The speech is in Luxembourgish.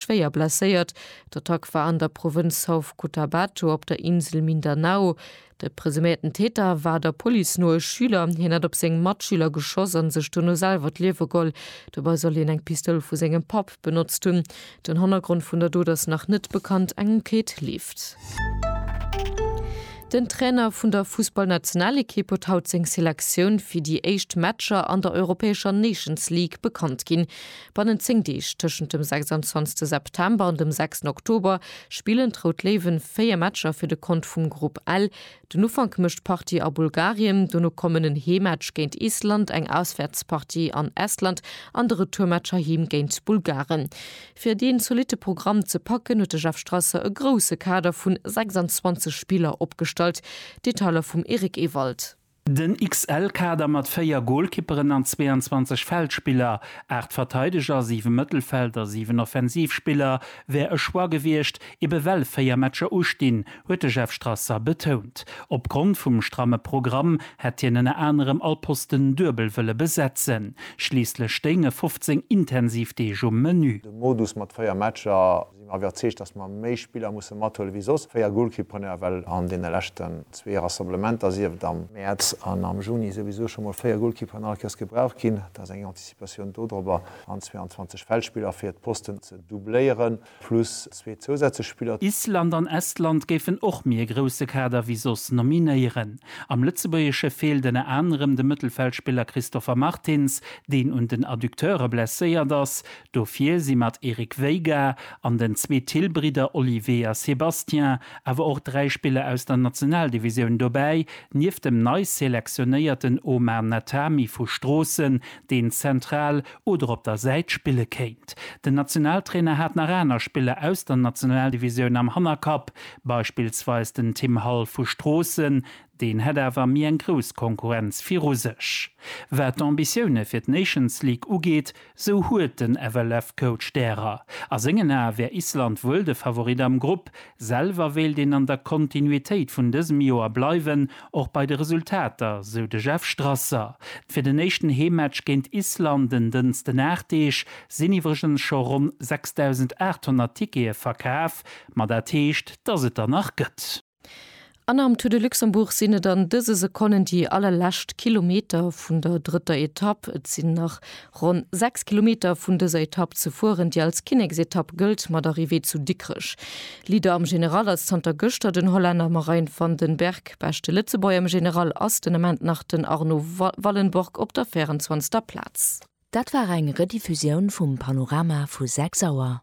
schwéier blesséiert. D'Attack war an der Provënz South Cotabato op der Insel Mindanao. De presuméierten Täter war der Police no e Schüler. Hien hätt op seng Matschüler geschoss a sech dono selwer d'Liewe geholl. Dobei soll hien eng Pistoul vu sengem Papp benotzt hunn. Den Hannergrond vun der Dot ass nach net bekannt. Eng Enquête leeft. Den Trainer vun der Fussballnationalekipp huet haut seng Selektioun fir déi éischt Matcher an der europäescher Nations League bekannt ginn. Bannent 10 Deeg, tëschent dem 26 September an dem 6 Oktober, spillen d'Rout Léiwen 4 Matcher fir de Kont vum Grupp L. Den Ufank mécht d'Partie a Bulgarien, dono kommen en Heemmatch géint Island, eng Auswäertspartie an Estland an de Retourmatch heiheem géint d'Bulgaren. Fir dee zolitte Programm ze packen, huet de Jeff Strasser e grousse Kader vun 26 Spiller opgestallt. Detailer vum Eric Ewald. Den XL-Kader mat 4 Golkipperen an 22 Feldspiller, 8 Verteideger, 7 Mëttelfeld a 7 Offensivspiller, wär e Choix gewiescht, ebe well 4 Matcher ustinn, huet de Jeff Strasser betount. Opgrond vum stramme Programm hätt hien ënner anerem all Posten duebel wëlle besetzen. Schliisslech stéinge 15 intensiv Deeg um Menü. De Modus mat 4 Matcher. sinn mer iwwerzeegt, dass mer méi Spiller musse mathuelen, wéi soss. Véier Golkippreneure, well an deene leschten zwee Rassemblementer, sief et am. Mäerz an am Juni, souwisou scho mol véier Golkipperen allequers gebraucht ginn. Dat ass eng Anticipatioun dodrobber, an 22 Feldspiller, fir d'Posten ze doubléieren, plus zwee zousätzlech Spiller. Island an Estland géifen och méi e grousse Kader wéi soss nominéieren. Am Lëtzebuergesche feelt ënner anerem de Mëttelfeldspiller Christopher Martins, deen un den Adducteure blesséiert ass. Dofir si mat Eric Veiga an den zwee Thill-Bridder Olivier a Sébastien awer och dräi Spiller aus der Nationaldivisioun dobäi, nieft dem nei selektionéierten Omar Natami vu Stroossen, deen zentral oder op der Säit spille kéint. Den Nationaltrainer hat nach aner Spiller aus der Nationaldivisioun am Hannerkapp, beispillsweis den Tim Hall vu Stroossen, Deen hätt awer méi eng grouss Konkurrenz viru sech. Wat d'Ambitioune fir d'Nations League ugeet, sou huet den FLF-Coach därer. A sengen Ae wär Island wuel de Favorit am Grupp. Selwer wéilt een an der Kontinuitéit vun dësem Joer bleiwen, och bei de Resultater, sou de Jeff Strasser. Fir den éischten Heemmatch géint Island en Dënsten Aacht Deeg sinn iwwregens scho ronn 6.800 Tickete verkaf. Ma dat heescht, dass et der nach gëtt. An am Tour de Luxembourg sinn et an dëse Sekonnen déi allerlescht Kilometer vun der drëtter Etapp. Et sinn nach ronn 6 Kilometer vun dëser Etapp ze fueren, déi als Kinneksetapp gëllt, mat Arrivée zu Dikrech. Leader am General ass zanter gëschter den Hollänner Marijn van den Berg. Beschte Lëtzebuerger am General ass den Ament nach den Arno Wallenborg op der 24. Plaz. Dat war eng Rediffusioun vum Panorama vu 6 Auer.